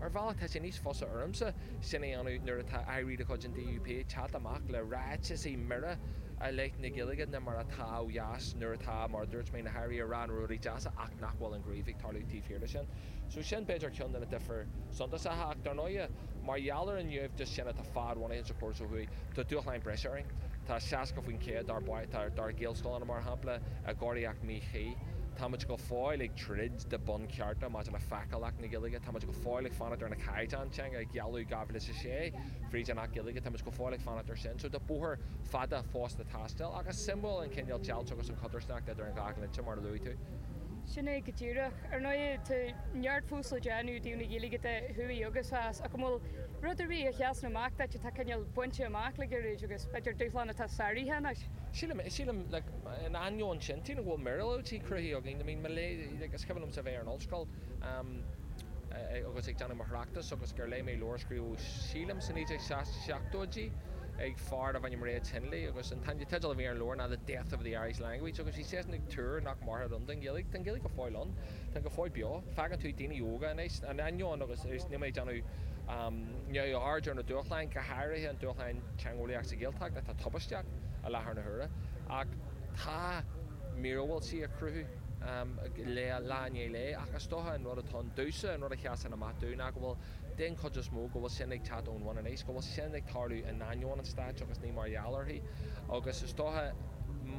Ar bhealach tá sé níos fusa ormsa sin a dhéanamh nuair atá airí de chuid an DUP ag teacht amach le ráiteasaí mire i leith na Gaeilge ná mar atá ó dheas nuair atá, mar a dúirt mé, na hairí ag rá na rudaí deasa ach nach bhfuil an gníomh ag tarlú taobh thiar de sin. So sin b'fhéidir ceann de na difir suntasacha ach dar ndóighe mar gheall ar an naimhdeas sin atá fadbhunaithe sa chóras ó thuaidh tá dúshláin breise orainn. Tá 60% dár dár Ghaelscoileanna mar shampla i gcóiríocht mhíchuí. Táimid go fóill ag. troid do bhunchearta maidir le feiceálacht na Gaeilge. Táimid go fóill ag fanacht ar na caighdeáin teanga a gealladh i 2006 fríd an Acht Gaeilge. Táimid go fóill ag fanacht ar sin. So tá bóthar fada fós le taisteal. Ach is suimiúil an cineál deighilt agus an codarsnacht idir an dhá dhlínse mar a luaigh tú. Sin é go díreach. Ar ndóigh tá neart fós le déanamh i dtaobh na Gaeilge de, thuaidh agus theas. Ach an bhfuil rud ar bith a sheasann amach duit atá cineál bainte amach le gairid agus b'fhéidir dúshlán atá sáraithe anois? Sílim é, sílim, in ainneoin sin, sílim go bhfuil miorúiltí cruthaithe againn. I mean, mo léamh, like, is cuimhin liomsa a bheith ar an ollscoil agus ag déanamh mo thráchtais agus gur léigh mé leabhar a scríobhadh, sílim, sna 1970idí ag fear darbh ainm Reg Hindley agus an teideal a bhí ar an leabhar ná The Death of the Irish Language agus bhí seisean ag tuar nach mairfeadh an, den Ghaeilge, tá an Ghaeilge go fóill ann. Tá go fóill beo. Faigheann tú daoine óga anois, in ainneoin agus níl mé ag déanamh neamhaird ar na dúshláin, go háirithe an dúshlán teangeolaíoch sa Ghaeltacht atá tubaisteach i láthair na huaire, ach tá míorúiltí á gcruthú lá i ndiaidh lae, ach is dócha an rud atá ann domhsa, an rud a sheasann amach dúinn ná go bhfuil den chuid is mó, go bhfuil sin ag teacht ón bhun aníos, go bhfuil sin ag tarlú in ainneoin an stáit agus ní mar gheall uirthi. Agus is dócha,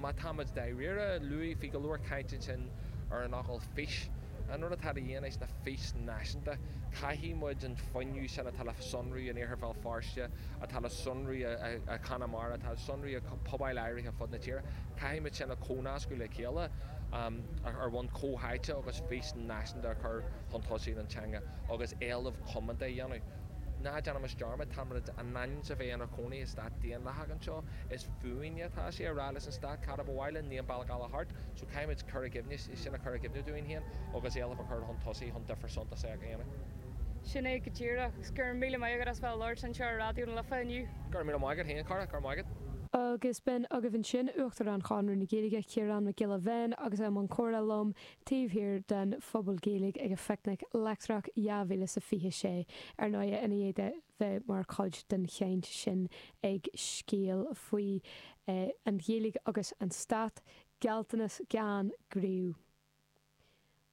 má táimid dáiríre, luaigh, bhí go leor caint ansin ar an fhocal 'fís'. An rud atá de dhíth anois ná fís náisiúnta. Caithfidh muid an fuinneamh sin atá le sonrú in Iarthar Bhéal Feirste, atá le sonrú i Conamara, atá le sonrú i bpobail áirithe fud na tíre, caithfidh muid sin a chomhnascadh le chéile ar bhonn comhtháite agus fís náisiúnta a chur chun tosaigh don teanga. agus éileamh coitianta a dhéanamh. Ná déanaimis dearmad, táimid in ainm is a bheith inár cónaí i stát daonlathach anseo. Is fúinne atá sé a rá leis an stát cad a ba mhaith linn, ní an bealach eile thart. So caithfimid cur i gcuimhne, sin a chur i gcuimhne dúinn féin agus éilimh a chur chun tosaigh chun difear suntasach a dhéanamh. Sin é go díreach. Go raibh míle maith agat as bheith ag labhairt anseo ar Raidió na Life inniu. Go raibh míle maith agat féin, a chara. Go raibh maith agat. Agus b'in agaibh ansin Uachtarán Chonradh na Gaeilge, Ciarán Mac Giolla Bhéin agus é i mbun comhrá liom. taobh thiar den Phuball Gaeilge ag an Phicnic Leictreach 2026, ar ndóighe, i ndiaidh dó bheith mar chuid den chaint sin ag Scéal faoi An Ghaeilge agus an Stát, Gealltanas Gan Gníomh.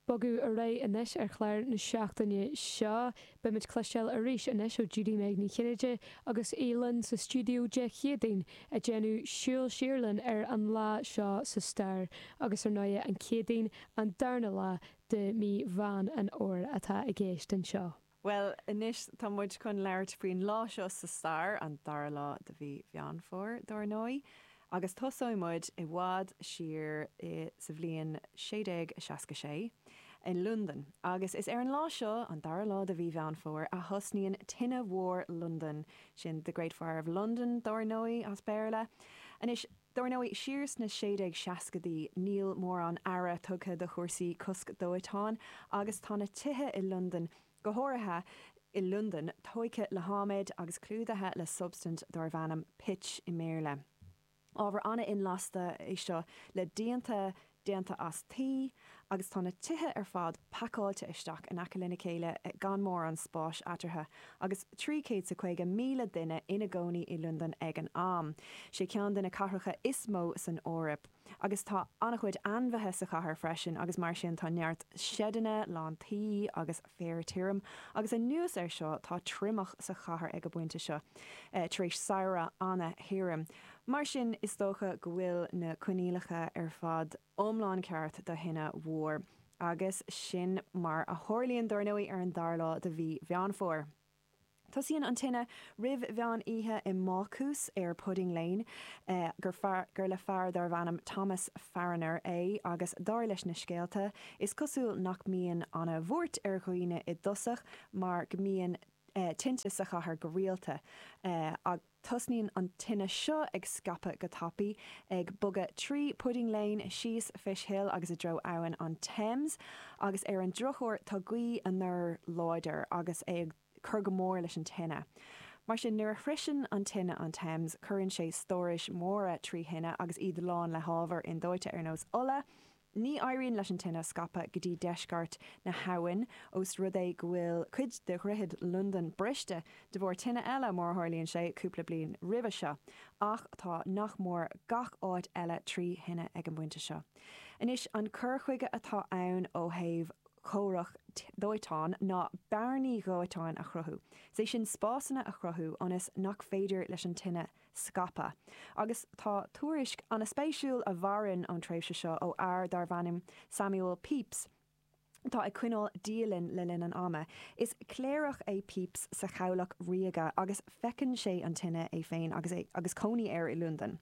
Bogadh ar aghaidh anois ar chlár na seachtaine seo. Beidh muid ag cloisteáil arís anois ó Judy-Meg Ní Chinnéide agus í linne sa stiúideo Dé Céadaoin ag déanamh súil siar linn ar an lá seo sa stair agus ar ndóighe an Chéadaoin an darna lá de mhí Mheán an Fhómhair atá i gceist anseo. Bhuel anois tá muid chun labhairt faoin lá seo sa stair, an dara lá de mhí Mheán Fómhair dar ndóigh. agus tosóidh muid i bhfad siar sa bhliain 1666 i Londain agus is ar an lá seo, an dara lá de mhí Mheán Fómhair, a thosnaíonn Tine Mhór Londain, sin The Great Fire of London dar ndóigh as Béarla. Anois, dar ndóigh, siar sna sé déag seascaidí níl mórán aire tugtha do chúrsaí cosc dóiteáin agus tá na tithe i Londain go háirithe i Londain, tóigthe le hadhmad agus clúdaithe le substaint darbh ainm 'pitch' i mBéarla. Ábhar an-inlasta é seo le díonta déanta as tuí agus tá na tithe ar fad pacáilte isteach in aice lena chéile gan mórán spáis eatarthu. Agus 350,000 duine ina gcónaí i Londain ag an am, 'sé ceann de na cathracha is mó san Eoraip. Agus tá an-chuid ainmhithe sa chathair freisin agus mar sin tá neart seideanna lán tuí agus féar tirim. Agus anuas air seo tá triomach sa chathair ag an bpointe seo tar éis samhradh an-thirim. Mar sin is dócha go bhfuil na coinníollacha ar fad iomlán ceart do thine mhór. Agus sin mar a tharlaíonn dar ndóigh ar an dara lá de mhí Mheán Fómhair. Tosaíonn an tine roimh mheán oíche i mbácús ar Pudding Lane gur fear, gur le fear darbh ainm Thomas Farriner é agus dar leis na scéalta, is cosúil nach mbíonn an-bhuairt ar dhaoine i dtosach mar go mbíonn tinte sa chathair go rialta. Tosnaíonn an tine seo ag scaipeadh go tapaidh, ag bogadh trí Pudding Lane, síos Fish Hill agus i dtreo abhainn an Thames, agus ar an drochuair tá gaoth anoir láidir agus é ag cur go mór leis an tine. Mar sin, nuair a shroiseann an tine an Thames, cuireann sé stórais mhóra trí thine agus iad lán le hábhar indóite ar nós ola, Ní éiríonn leis an tine scaipeadh go dtí deisceart na habhann os rud é go bhfuil cuid de dhroichead Londain briste de bharr tine eile, mar a tharlaíonn sé, cúpla bliain roimhe seo. Ach tá nach mór gach áit eile trí thine ag an bpointe seo. Anois, an cur chuige atá ann ó thaobh comhrac dóiteáin ná bearnaí dóiteáin a chruthú, is é sin spásanna a chruthú ionas nach féidir leis an tine scaipeadh. Agus tá tuairisc an-spéisiúil a mhaireann ón tréimhse seo ó fhear darbh ainm Samuel Pepys atá ag coinneáil dialann le linn an ama. Is cléireach é Pepys sa Chabhlach Ríoga agus feiceann sé an tine, é féin agus cónaí air i Londain.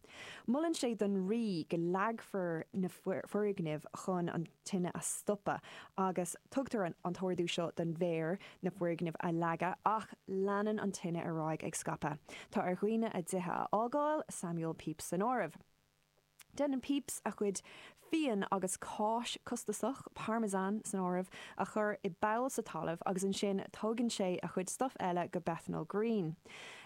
Molann sé don Rí go leagfar na foirgnimh chun an. tine a stopadh agus tugtar an an t-ordú seo don Mhéara na foirgnimh a leagadh ach leanann an tine ar aghaidh ag scaipeadh. Tá ar dhaoine a dtithe a fhágáil, Samuel Pepys san áireamh. Déanann Pepys a chuid fíon agus cáis costasach, Parmesan san áireamh, a chur i bpoll sa talamh agus ansin tógann sé a chuid stuif eile go Bethnal Green.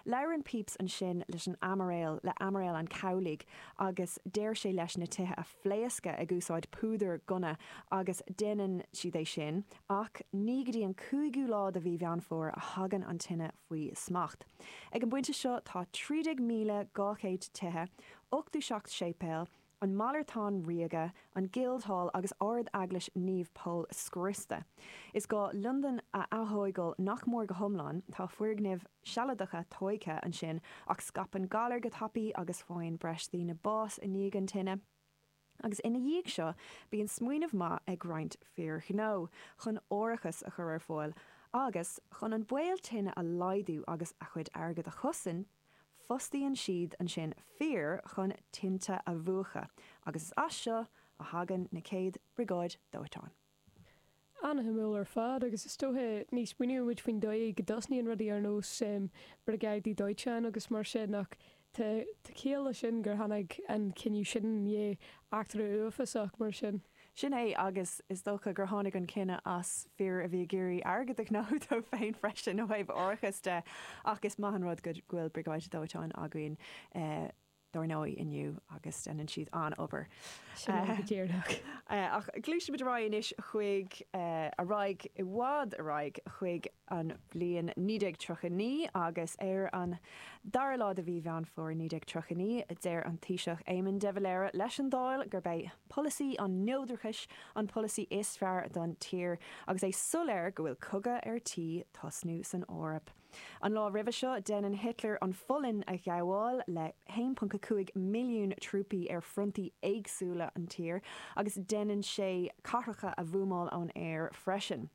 Labhrann Pepys ansin leis an Aimiréal, le Aimiréal an Chabhlaigh agus deir sé leis na tithe a. phléascadh ag úsáid púdar gunna agus déanann siad é sin ach ní go dtí an cúigiú lá de mhí Mheán Fómhair a thagann an tine faoi smacht. Ag an bpointe seo tá 13,200 tithe, 87 séipéal, an Malartán Ríoga, an Guildhall agus Ard-Eaglais Naomh Pól scriosta. Is gá Londain a atógáil nach mór go hiomlán, tá foirgnimh sealadacha tógtha ansin ach scaipeann galair go tapaí agus faigheann breis daoine bás i ndiaidh an tine. Agus ina dhiaidh seo bíonn smaoineamh maith ag roinnt fir ghnó chun árachas a chur ar fáil agus, chun an baol tine a laghdú agus a chuid airgead a chosaint, fostaíonn siad ansin fir chun tinte a mhúchadh agus is as seo a thagann na chéad briogáidí dóiteáin. An-shuimiúil ar fad, agus is dóichí ní smaoiníonn muid faoin dóigh go dtosnaíonn rudaí ar nós briogáidí dóiteáin agus mar sin ach tá ciall le sin gur tháinig an cinneadh sin i ndiaidh eachtra uafásach mar sin. Sin é, agus is dócha gur tháinig an cinneadh as fir a bhí ag iarraidh airgead a ghnóthú dóibh féin freisin ó thaobh árachas de ach is maith an rud go bhfuil briogáidí dóiteáin againn dar ndóigh inniu agus déanann siad an-obair. Sin é go díreach. Ach gluaisfimid ar aghaidh anois chuig, ar aghaidh, i bhfad ar aghaidh chuig an bhliain 1939 agus ar an dara lá de mhí Mheán Fómhair 1939 deir an Taoiseach Éamon de Valera leis an Dáil gurb é polasaí an neodrachais an polasaí is fearr don tír agus é soiléir go bhfuil cogadh ar tí tosnú san Eoraip. An lá roimhe seo, déanann Hitler an Pholainn a ghabháil le 1.5 milliún trúpaí ar fhrontaí éagsúla an tír, agus déanann sé cathracha a bhuamáil ón aer freisin.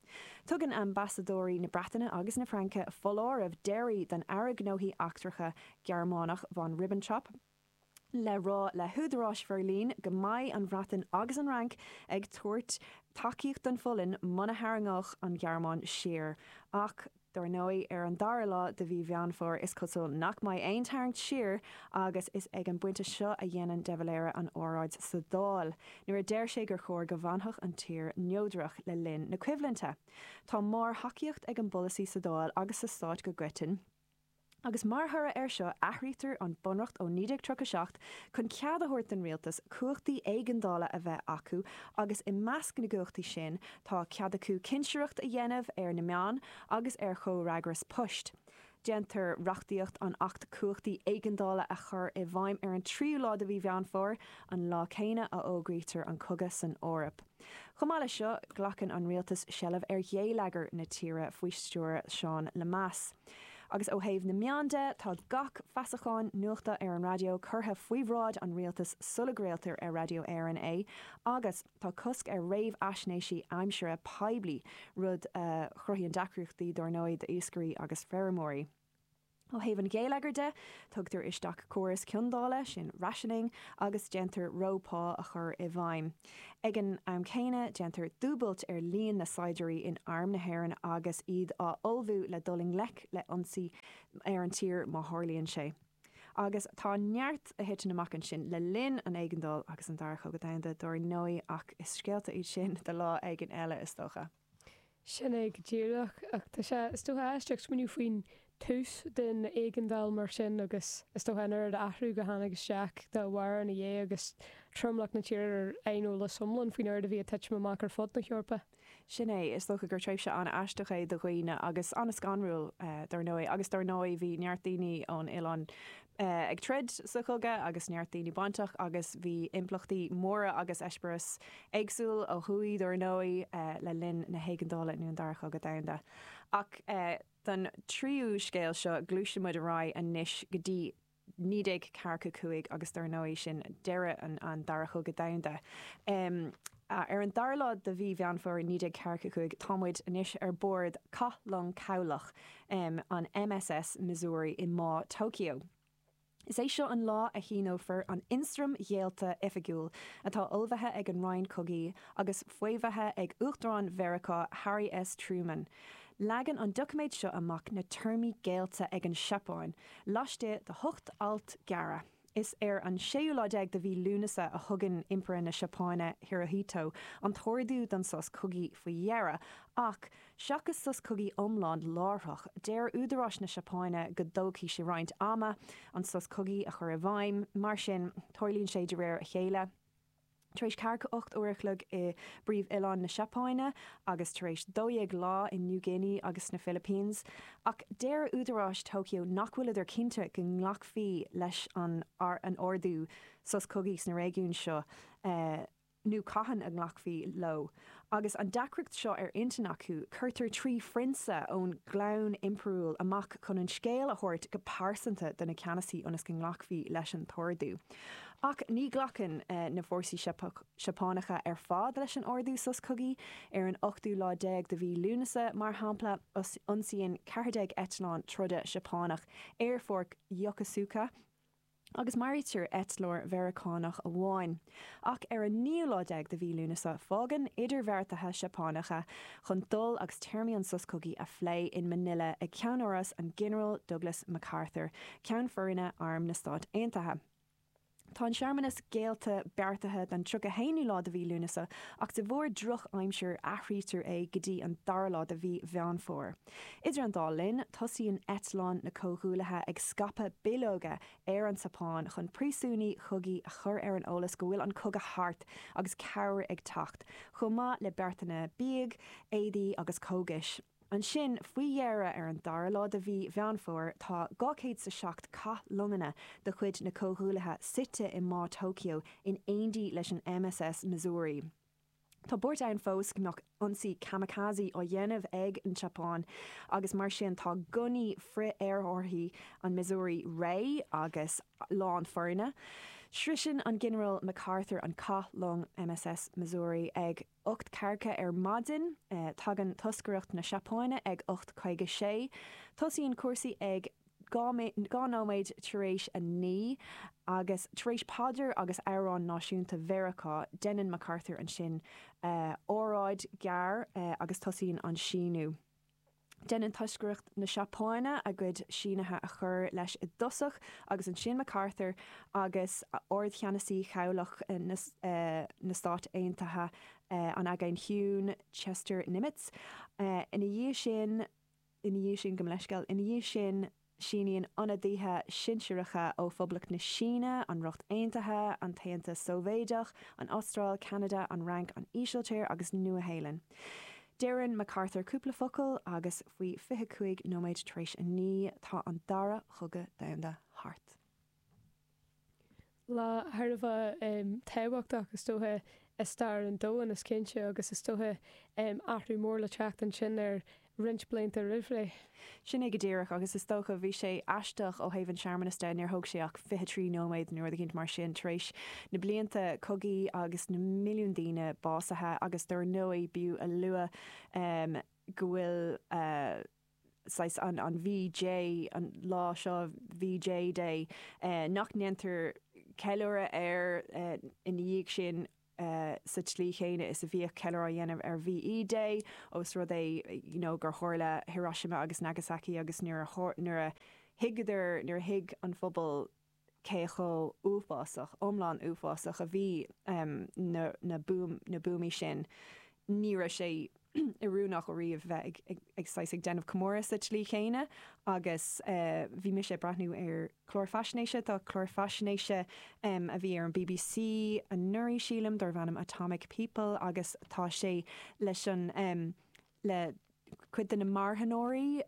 Tugann ambasadóirí na Breataine agus na Fraince foláireamh deiridh don Aire Gnóthaí Eachtracha Gearmánach, von Ribbentrop, le rá le húdaráis Bheirlín go mbeidh an Bhreatain agus an Fhrainc ag tabhairt tacaíocht don Pholainn muna tharraingeodh an Ghearmáin siar. Ach dar ndóigh ar an dara lá de mhí Mheán Fómhair is cosúil nach mbeidh aon tarraingt siar agus is ag an bpointe seo a dhéanann de Valera an óráid sa Dáil nuair a deir sé gur chóir go bhfanfadh an tír neodrach le linn na coimhlinte. Tá mórthacaíocht ag an bpolasaí sa Dáil agus sa Stát go coiteann. agus mar thoradh air seo athraítear an bunreacht ó 1937 chun cead a thabhairt don rialtas cumhachtaí éigeandála a bheith acu agus i measc na gcumhachtaí sin tá cead acu cinsireacht a dhéanamh ar na meáin agus ar chomhfhreagras poist. Déantar reachtaíocht an Acht Cumhachtaí Éigeandála a chur i bhfeidhm ar an tríú lá de mhí Mheán Fómhair, an lá céanna a fhógraítear an cogadh san Eoraip. Chomh maith leis seo, glacann an rialtas seilbh ar ghéilleagar na tíre faoi stiúir Sheáin Lemass. Agus ó thaobh na meán de, tá gach feasachán nuachta ar an raidió curtha faoi bhráid an rialtais sula gcraoltar ar Radio Éireann é agus tá cosc ar réamhaisnéisí aimsire poiblí, rud a chruthaíonn deacrachtaí dár ndóigh d'iascairí agus feirmeoirí. Ó thaobh an gheilleagair de, tugtar isteach córas ciondála, sin rationing, agus déantar reo pá a chur i bhfeidhm. Ag an am céanna, déantar dúbailt ar líon na saighdiúirí in Arm na hÉireann agus iad á ullmhú le dul i ngleic le ionsaí ar an tír má tharlaíonn sé. Agus tá neart a thiteann amach ansin le linn an éigeandáil agus an Dara Chogadh Domhanda dár ndóigh ach is scéalta iad sin do lá éigin eile is dócha. Sin é go díreach. Ach tá sé, is dócha, aisteach smaoineamh faoin tús den éigeandáil mar sin agus is dócha an oiread athrú go tháinig isteach dá bharr ina dhiaidh agus tromlach na tíre ar aineolas iomlán faoin oiread a bhí ag titim amach ar fud na hEorpa. Sin é. Is dócha gur tréimhse an-aisteach é do dhaoine agus an-scanrúil, dar ndóigh. Agus dar ndóigh bhí neart daoine ón oileán eh, ag troid sa chogadh agus neart daoine bainteach agus bhí impleachtaí móra agus eispéireas éagsúil ó thuaidh dár ndóigh eh, le linn na hÉigeandála nó an Dara Chogadh Domhanda. Ach eh, don tríú scéal seo gluaiseann muid ar aghaidh anois go dtí 1945 agus dár ndóigh sin deireadh an Dara Chogadh Domhanda. Em. Ar an dara lá de mhí Mheán Fómhair 1945, tá muid anois ar bord cathlong cabhlach, an USS Missouri, i mBá Tokyo. Is é seo an lá a shíneofar an Ionstraim Ghéillte Oifigiúil, atá ullmhaithe ag an Roinn Cogaidh agus faomhaithe ag Uachtarán Mheiriceá, Harry S. Truman. Leagann an doiciméad seo amach na téarmaí géillte ag an Seapáin, laistigh de hocht alt gearra. Is ar an séú lá déag de mhí Lúnasa a thugann Impire na Seapáine, Hirohito, an t-ordú don sos cogaidh faoi dheireadh. Ach, seachas sos cogaidh iomlán láithreach, deir údaráis na Seapáine go dtógfaidh sé roinnt ama an sos cogaidh a chur i bhfeidhm. Mar sin, tarlaíonn sé de réir a chéile. Tar éis ceathracha a hocht uair a chloig i bpríomh-oileán na Seapáine agus tar éis dó dhéag lá in New Guinea agus sna Philippines. Ach deir údaráis Tokyo nach bhfuileadar cinnte go nglacfaí leis an ordú sos cogaidh sna réigiúin seo nó cathain a nglacfaí leo. Agus an deacracht seo ar intinn acu, cuirtear trí phrionsa ón gclann impiriúil amach chun an scéal a thabhairt go pearsanta do na ceannasaithe ionas go nglacfaí leis an t-ordú. Ach ní ghlacann na fórsaí Seapánacha ar fad leis an ordú sos cogaidh. Ar an ochtú lá déag de mhí Lúnasa, mar shampla, ionsaíonn 14 eitleán troda Seapánach aerpháirc Yokosuka, agus maraítear eitleoir Meiriceánach amháin. Ach ar an naoú lá déag de mhí Lúnasa fágann idirbheartaithe Seapánacha chun dul agus téarmaí an sos cogaidh a phlé in Manila ag ceannáras an Ghinearáil Douglas MacArthur, Ceann Foirne Arm na Stát Aontaithe. Tá an searmanas géillte beartaithe don tríocha haonú lá de mhí Lúnasa ach de bharr drochaimsir athraítear é go dtí an dara lá de mhí Mheán Fómhair. Idir an dá linn, tosaíonn eitleáin na Comhghuaillithe ag scaipeadh bileoga ar an tSeapáin chun príosúnaigh chogaidh a chur ar an eolas go bhfuil an cogadh thart agus cabhair ag teacht, chomh maith le beartanna bídh, éadaí agus cógais. Ansin, faoi dheireadh, ar an dara lá de Mhí Mheán Fómhair, tá 207 cathlonganna de chuid na Comhghuaillithe suite i mBá Tokyo in éindí leis an MSS Missouri. Tá buairt ann fós go mbeadh ionsaí kamikaze á dhéanamh ag an tSeapáin agus mar sin tá gunnaí frith-aerárthaí an Missouri réidh agus lán foirne. Sroiseann an Ginearál MacArthur an cathlong MSS Missouri ag 8:40 ar maidin. Tagann toscaireacht na Seapáine ag 8:56. Tosaíonn cúrsaí ag. Dhá nóiméad tar éis a naoi agus tar éis paidir agus amhrán náisiúnta Mheiriceá, déanann MacArthur ansin óráid ghearr agus tosaíonn an síniú. Déanann toscaireacht na Seapáine a gcuid sínithe a chur leis i dtosach agus ansin MacArthur agus Ardcheannasaí Chabhlach na Stát Aontaithe an Aigéin Chiúin, Chester Nimitz. Ina dhiaidh sin. Ina dhiaidh sin, gabhaim leithscéal, ina dhiaidh sin síníonn ionadaithe sinsearacha ó Phoblacht na Síne, an Ríocht Aontaithe, an tAontas Sóivéideach, an Astráil, Ceanada, an Fhrainc, an Ísiltír agus Nua-Shéalainn. Deireann MacArthur cúpla focal agus faoi fiche cúig nóiméad tar éis a naoi tá an dara cogadh domhanda thart. Lá thar a bheith tábhachtach is dócha i stair an domhain is cinnte agus is dócha athrú mór le teacht ansin ar roinnt blianta roimh ré. Sin é go díreach agus is dócha bhí sé aisteach ó thaobh an searmanas de, níor thóg sé ach fiche trí nóiméad nó rud eicínt mar sin tar éis na blianta cogaí agus na milliúin duine básaithe agus dár ndóigh b'fhiú a lua go bhfuil saghas an VJ an lá seo VJ Day nach ndéantar ceiliúradh air ina dhiaidh sin sa tslí chéanna is a bhíodh ceiliúradh á dhéanamh ar VE Day ós rud é you know gur tharla Hiroshima agus Nagasaki agus nuair a nuair a thuigeadar nuair a thuig an phobal cé chomh huafásach, iomlán uafásach a bhí na na buamaí sin. Ní raibh sé oiriúnach ariamh bheith ag saghas ag déanamh comóradh sa tslí chéanna agus bhí mise ag breathnú ar clár faisnéise, tá clár faisnéise a bhí ar an bbc anuraidh sílim, darbh ainm Atomic People agus tá sé leis an le cuid de na marthanóirí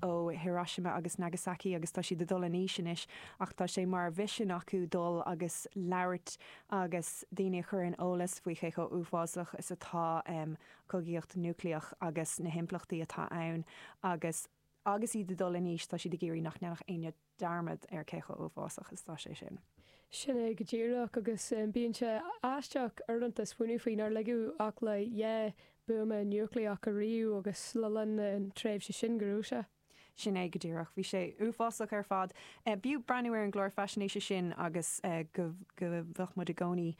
ó Hiroshima agus Nagasaki agus tá siad ag dul in aois anois ach tá sé mar mhisean acu dul agus labhairt agus daoine a chur in eolas faoi cé chomh huafásach is atá an cogaíocht núicléach agus na himpleachtaí atá ann agus agus iad ag dul in aois tá siad ag iarraidh nach ndéanfadh éinne dearmad ar cé chomh huafásach is atá sé sin. Sin é go díreach agus bíonn sé aisteach uaireanta smaoineamh faoi nár ligeadh ach le dhá buama núicléach ariamh agus le linn na tréimhse sin go raibh sé. Sin é go díreach. Bhí sé uafásach ar fad. B'fhiú breathnú ar an gclár faisnéise sin agus go mbeadh muid i gcónaí.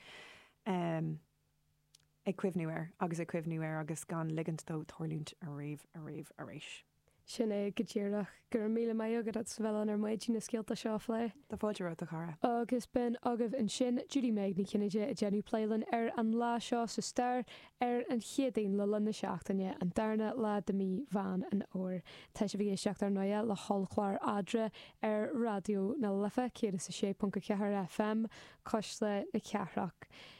ag cuimhniú air agus ag cuimhniú air agus gan ligint dó tarlúint ariamh ariamh arís. Sin é go díreach. Go raibh míle maith agat as a bheith linn ar maidin na scéalta seo a phlé. Tá fáilte romhat a chara. Agus b'in agaibh ansin, Judy-Meg Ní Chinnéide ag déanamh plé linn ar an lá seo sa stair, ar an Chéadaoin le linn na seachtaine, an darna lá de mhí Mheán an Fhómhair. Tá sibh ag éisteacht ar ndóighe le hollchlár Eadra ar Raidió na Life 106.4 FM, Cuisle na Cathrach.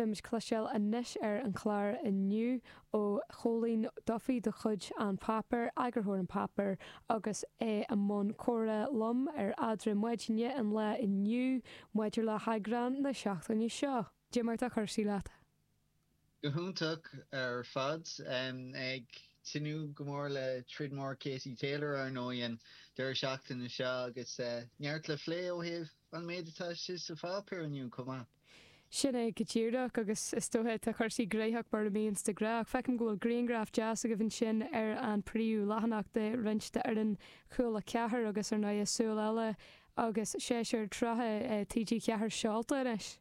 Beimid ag cloisteáil anois ar an chlár inniu ó Chóilín Duffy de chuid An Páipéar, eagarthóir An Páipéar agus é i mbun comhrá liom ar eadra maidine an lae inniu maidir le heagrán na seachtaine seo. Goidé mar atá cúrsaí leat. Go hiontach ar fad. Ag tnúth go mór le troid mór Katie Taylor ar ndóigh an deireadh seachtaine seo agus neart le phlé ó thaobh an méid atá istigh sa Pháipéar inniu chomh maith. Sin é go díreach agus is dóiche tá cúrsaí graitheach mar a bíonns de ghnáth feicim go bhfuil griangraf deas agaibh ansin ar an príomhleathanach de roinnt d'fhoireann Chúla Ceathair agus ar ndóighe súil eile agus séasúr tríocha TG4 seolta anois.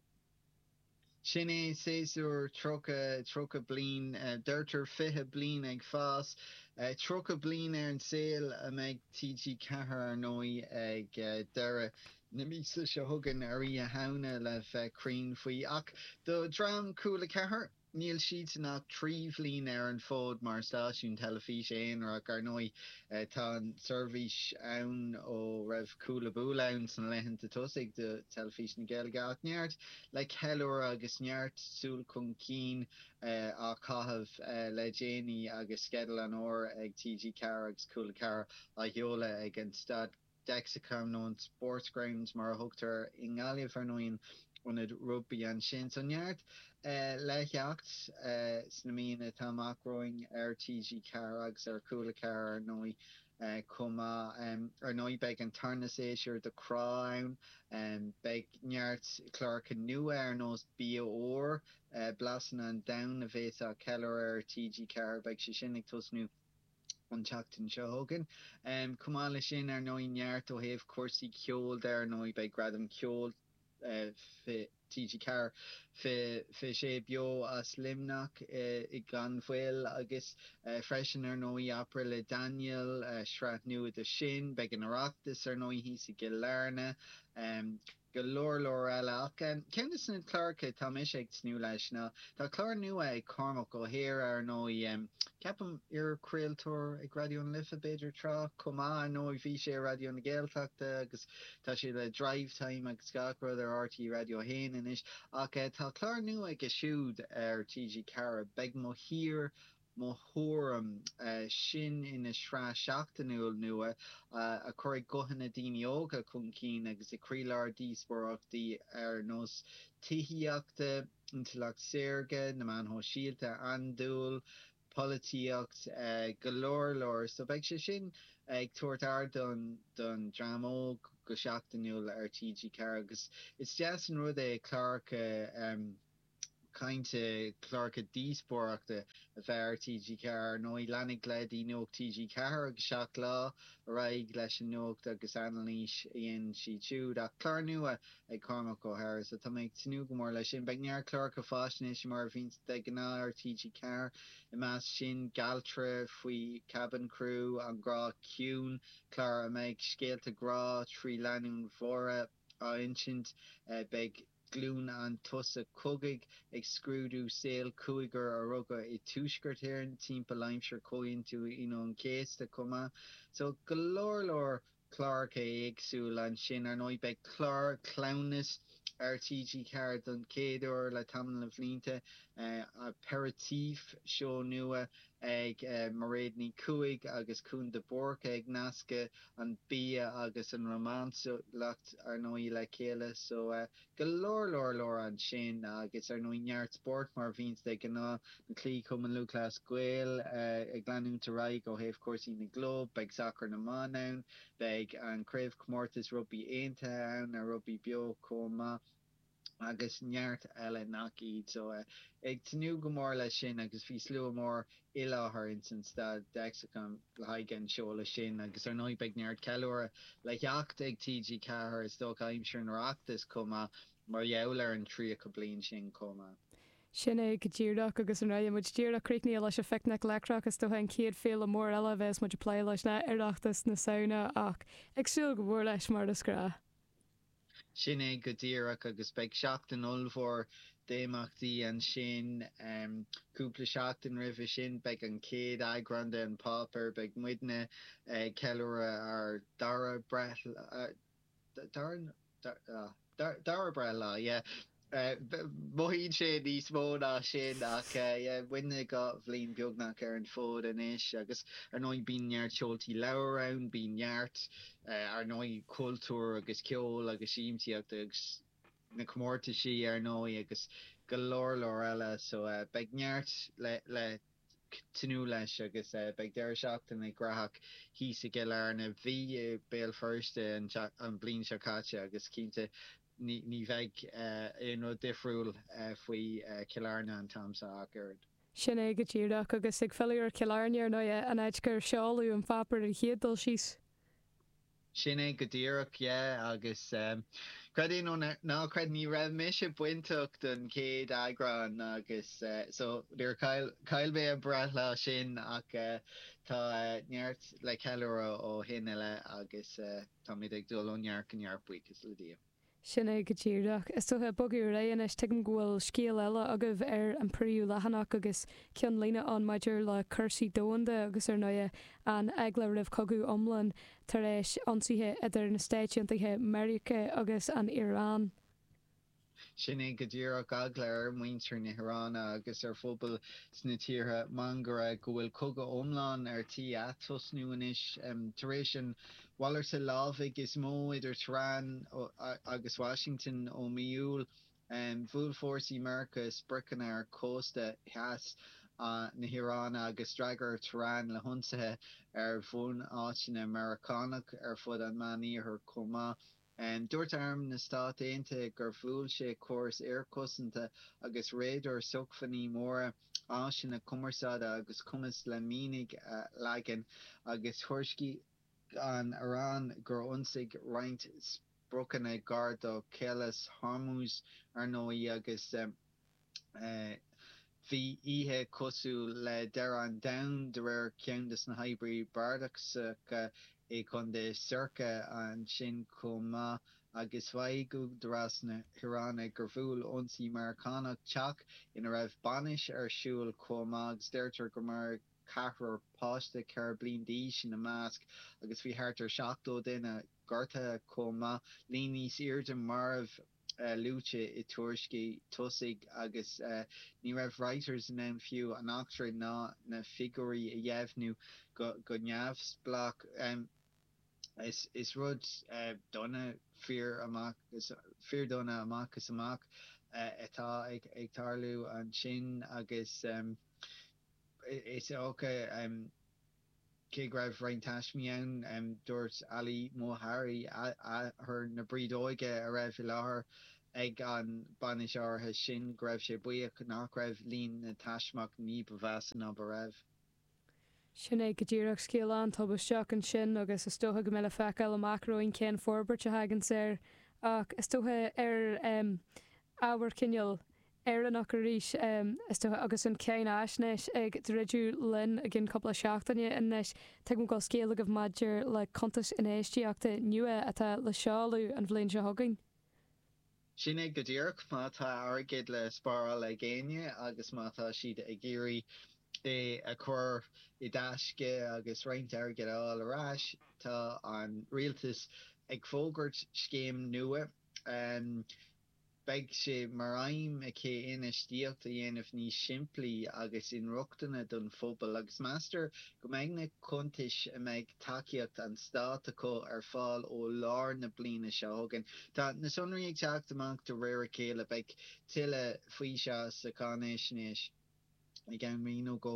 Sin é séasúr tríocha, tríocha bliain, deirtear fiche bliain ag fás, tríocha bliain ar an saol a mbeidh TG4 ar ndóigh ag deireadh na míosa seo chugainn ar Oíche Shamhna le bheith cruinn faoi. Ach do dhream Cúla 4, níl siadsan ach trí bhliain ar an bhfód mar stáisiún teilifíse aonair ach ar ndóigh tá an tseirbhís ann ó raibh Cúlabúla ann sna laethanta tosaigh de Teilifís na Gaeilge ach neart le ceiliúradh agus neart súil chun cinn á chaitheamh le déanaí agus Sceideal an Fhómhair ag TG4 agus Cúla 4 á sheoladh ag an Staid Dexcom nó an Sportsground mar a thugtar i nGaillimh ar ndóigh, ionad rugbaí ansin. So neart le theacht sna míonna atá amach romhainn ar TG4 agus ar Cúla 4 ar ndóigh chomh maith. Ar ndóigh beidh an tarna séasúr de Crá ann. Beidh neart cláracha nua ar nós Bia Úr, Blasanna an Domhain a bheas á ceiliúradh ar TG4, beidh sé sin ag tosnú. an tseachtain seo chugainn. Chomh maith leis sin, ar ndóigh, neart ó thaobh cúrsaí ceoil de. Ar ndóigh, beidh Gradam Ceoil TG4, beidh sé beo as Luimneach gan mhoill agus freisin, ar ndóigh, Opry le Daniel, sraith nua de sin. Beidh an Oireachtas, ar ndóigh, thíos i gCill Airne. Go leor leor eile ach ceann dos na cláracha atá mise ag tnúth leis ná tá clár nua ag Cormac Ó hEadhra ar ndóigh, ceapaim iarchraoltóir ag Raidió na Life b'fhéidir tráth chomh maith ar ndóigh bhí sé ar Raidió na Gaeltachta agus tá sé le Drive Time agus gach rud ar RTÉ Raidió a hAon anois ach tá clár nua aige siúd ar TG4 beidh mo thír mo thuairim. Sin ina shraith sheachtainiúil nua a chuirfidh guthanna daoine óga chun cinn agus i gcroílár díospóireachtaí ar nós tithíochta, intleacht saorga, na meáin shóisialta, andúil, polaitíocht, go leor leor. So beidh sé sin ag tabhairt ardán don dream óg go seachtainiúil ar TG4 agus is deas an rud é cláracha, cainte cláracha díospóireachta a bheith ar TG4. Ar ndóigh, leanfaidh leithéidí Nuacht TG4 agus Seacht Lá ar aghaidh leis an nuacht agus anailís a dhéanann siad siúd. Ach clár nua ag Cormac Ó hEadhra is tá mé ag tnúth go mór leis sin. Beidh neart cláracha faisnéise, mar a bhíonn de ghnáth ar TG4, i measc sin Galtra faoi Cabin Crew, An Grá Ciúin, clár a mbeidh scéalta grá trí lánúin bhodhra á insint. Beidh. Glúin an tSosa Cogaidh ag scrúdú saol cúigear a rugadh i dTuaisceart Éireann timpeall aimsir Chomhaontú Aoine an Chéasta chomh maith. So go leor leor cláracha éagsúil ansin. Ar ndóigh beidh clár cleamhnais ar TG4 don chéad uair le tamall de bhlianta, Aperitif, seó nua ag Mairéad Ní Chuaig agus Cuan de Búrca ag nascadh an bia agus an rómánsúlacht ar ndóigh le chéile so go leor leor leor ansin agus ar ndóigh neart spóirt mar a bhíonns de ghnáth, na cluichí Cumann Lúthchleas Gael ag leanúint ar aghaidh ó thaobh cúrsaí na gclub, beidh sacar na mban ann, beidh an craobhchomórtas rugbaí aontaithe ann, an rugbaí beo chomh maith. agus neart eile nach iad. So eh ag tnúth go mór leis sin agus bhí slua mór i láthair insan Staid Dexcom le haghaidh an seoladh sin agus ar ndóigh beidh neart ceiliúradh le theacht ag TG4 is dócha aimsir an Oireachtais chomh maith mar gheall ar an 30 bliain sin chomh maith. Sin é go díreach agus an raibh muid díreach críochnaithe leis an Picnic Leictreach is dócha an chéad féile mór eile a bheas muid ag plé leis ná Oireachtas na Samhna ach ag súil go mór leis mar is gra. Sin é go díreach agus beidh seachtain ollmhór d'imeachtaí ansin. Cúpla seachtain roimhe sin beidh an chéad eagrán de An Páipéar, beidh muidne ag ceiliúradh ár dara breithlá, dara breithlá, yeah. Mothaíonn sé níos mó ná sin ach yeah beidh muid dhá bhliain beagnach ar an fód anois agus ar ndóigh bíonn neart seoltaí leabhar ann, bíonn neart ar ndóigh cultúr agus ceol agus siamsaíocht agus na comórtaisí ar ndóigh agus go leor leor eile so beidh neart le le tnúth leis agus beidh deireadh seachtaine gnóthach thíos i gCill Airne. Bhí i mBéal Feirste an bhliain seo caite agus cinnte Ní bheidh aon rud difriúil faoi Chill Airne an t-am seo ach oiread. Sin é go díreach. Agus ag filleadh ar Chill Airne, ar ndóigh, an áit gur seoladh an páipéar ar an chéad dul síos. Sin é go díreach, yeah. Agus creid é nó ná creid, ní raibh mise bainteach don chéad eagrán agus so chaill mé an breithlá sin ach tá neart le ceiliúradh ó shin i leith agus. Táimid ag dul ó neart go neart buíochas le Dia. Sin é go díreach. Is dócha, ag bogadh ar aghaidh anois. Tuigim go bhfuil scéal eile agaibh ar an bpríomhleathanach agus ceannlíne ann maidir le cúrsaí domhanda agus ar ndóigh an eagla roimh chogadh iomlán tar éis ionsaithe idir na Stáit Aontaithe Mheiriceá agus an Iaráin. Sin é go díreach eagla ar mhuintir na hIráine agus ar phobail sna tíortha máguaird, go bhfuil cogadh iomlán ar tí atosnú anois. Tar éis an mhalartaithe lámhaigh is mó idir Tehran agus Washington ó mhí Iúil, bhuail fórsaí Mheiriceá spriocanna ar chósta theas na hIráine agus d'fhreagair Tehran le hionsaithe ar bhunáiteanna Meiriceánacha ar fud an Meánoirthir chomh maith. Dúirt Arm na Stát Aontaithe gur bhuail sé córas aerchosanta agus radair sócmhainní mara, áiseanna cumarsáide agus cumas le mianaigh a leagan, agus thuairiscigh an Iaráin gur ionsaíodh roinnt spriocanna gar do Chaolas Hormuz, ar ndóigh, agus. Bhí oíche cosúil le deireadh an domhain de réir ceann de na hoibrithe bardasacha i gContae Sirik ansin chomh maith agus mhaígh údaráis na hIaráine gur bhuail ionsaí Meiriceánach teach ina raibh bainis ar siúl chomh maith agus deirtear gur maraíodh ceathrar páiste 4 bliain d'aois ina measc agus bhí thart ar 70 duine gortaithe chomh maith, líon níos airde marbh. luaite i tuairiscí tosaigh agus ní raibh Reuters in ann fiú an eachtra ná na figiúirí a dheimhniú go neamhspleách. Is rud dona fíordhona amach is amach atá ag tarlú ansin agus is dócha. Cé go raibh roinnt taismeach ann, dúirt Ali Mouhari, athair na brídeoige a raibh i láthair ag an bainis áirithe sin, go raibh sé buíoch nach raibh líon na dtaismeach ní ba mheasa ná mar a bhí. Sin é go díreach scéal an-tubaisteach ansin agus is dócha go mbeidh le feiceáil amach romhainn cén forbairt a thagann air ach is dócha ar ábhar cineál Éireannach arís, is dócha, agus an Cháinaisnéis ag druidim linn i gceann cúpla seachtaine. Anois, tuigim go bhfuil scéal agaibh maidir le cuntas infheistíochta nua atá le seoladh an bhliain seo chugainn. Sin é go díreach. Má tá airgead le spáráil ag éinne agus má tá siad ag iarraidh é a chur i dtaisce agus roinnt airgid a fháil ar ais, tá an rialtas ag fógairt scéim nua. Beidh sé mar aidhm aici infheistíocht a dhéanamh níos simplí agus inrochtana don phobal agus meastar go mbeidh na cuntais a mbeidh tacaíocht an stáit acu ar fáil ó lár na bliana seo chugainn. Tá na sonraí ag teacht amach de réir a chéile. Beidh tuilleadh faoi seo sa cháinaisnéis. i gceann mí nó dhó,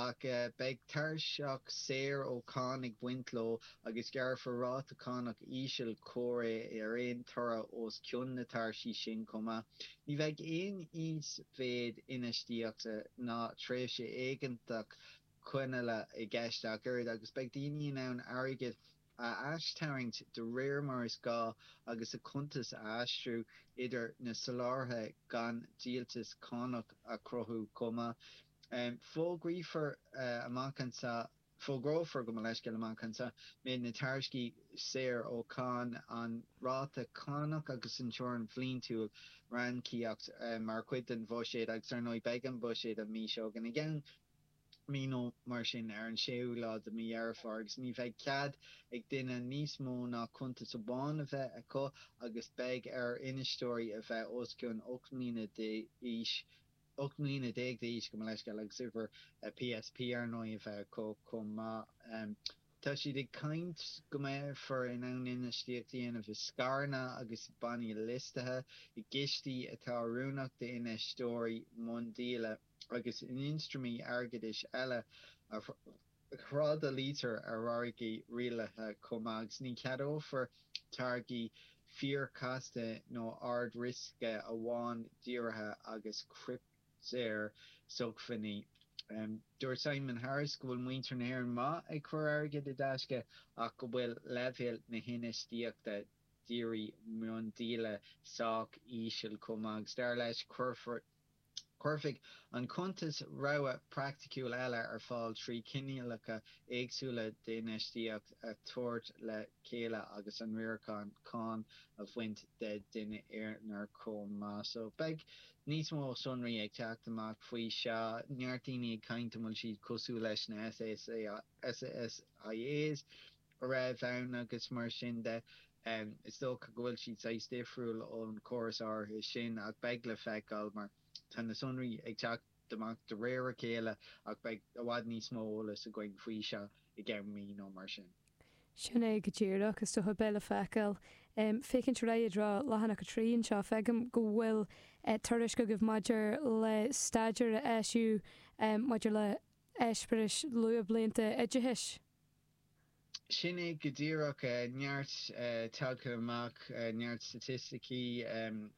ach beidh tairseach saor ó cháin ag baint leo agus gearrfar ráta cánach íseal comhréidh ar aon toradh os cionn na tairsí sin chomh maith. Ní bheidh aon íosmhéid infheistíochta ná tréimhse éigeantach coinneála i gceist ach oiread agus beidh daoine in ann airgead a aistarraingt de réir mar is gá agus a cuntas a aistriú idir na soláthraithe gan dliteanas cánach a chruthú chomh maith. Fógraífear amach anseo, fógrófar, gabh mo leithscéal, amach anseo, méid na tairiscí saor ó cháin, an ráta cánach agus an teorainn bhliantúil ranníocaíochta mar chuid den bhuiséad agus, ar ndóigh, beidh an buiséad an mhí seo chugainn, i gceann. mí nó mar sin ar an séú lá de mhí Dheireadh Fómhair agus ní bheidh cead ag duine níos mó ná cuntas amháin a bheith acu agus beidh ar infheisteoirí a bheith os cionn 18 mbliana d'aois, gabh mo leithscéal, agus uimhreacha PSP ar ndóigh a bheith acu chomh maith. Tá siad ag caint go mbeifear in ann infheistíocht a dhéanamh i scaireanna agus i bannaí liostaithe, i gcistí atá oiriúnach d'infheisteoirí miondíola. agus in ionstraimí airgeadais eile a thrádálaítear ar mhargaidh rialaithe chomh maith, agus ní cheadófar táirgí fíorchasta nó ard-riosca amhail díorthaigh agus criptea-shócmhainní. Dúirt Simon Harris go bhfuil muintir na hÉireann maith ag cur airgid i dtaisce ach go bhfuil leibhéal na hinfheistíochta dírí miondíola sách íseal chomh maith agus dar leis, cuirfear Cuirfidh an cuntas rogha praiticiúil eile ar fáil trí chineálacha éagsúla d'infheistíocht a thabhairt le chéile agus an riarachán cánach a bhaint den duine aonair chomh maith. So beidh níos mó sonraí ag teacht amach faoi seo. Neart daoine ag caint an bhfuil siad cosúil leis na SSIAs. a bhí ann agus mar sin de. Is dócha go bhfuil siad saghas difriúil ón chóras áirithe sin ach beidh le feiceáil mar tá na sonraí ag teacht amach de réir a chéile ach beidh i bhfad níos mó eolas againn faoi seo i gceann mí nó mar sin. Sin é go díreach. Is ea, beidh le feiceáil. Ag féachaint ar aghaidh i dtreo leathanach a trí anseo, feicim go bhfuil tuairisc agaibh maidir le staidéar a eisíodh maidir le heispéiris luathbhlianta oideachais. Sin é go díreach. Neart tagtha amach, neart staitisticí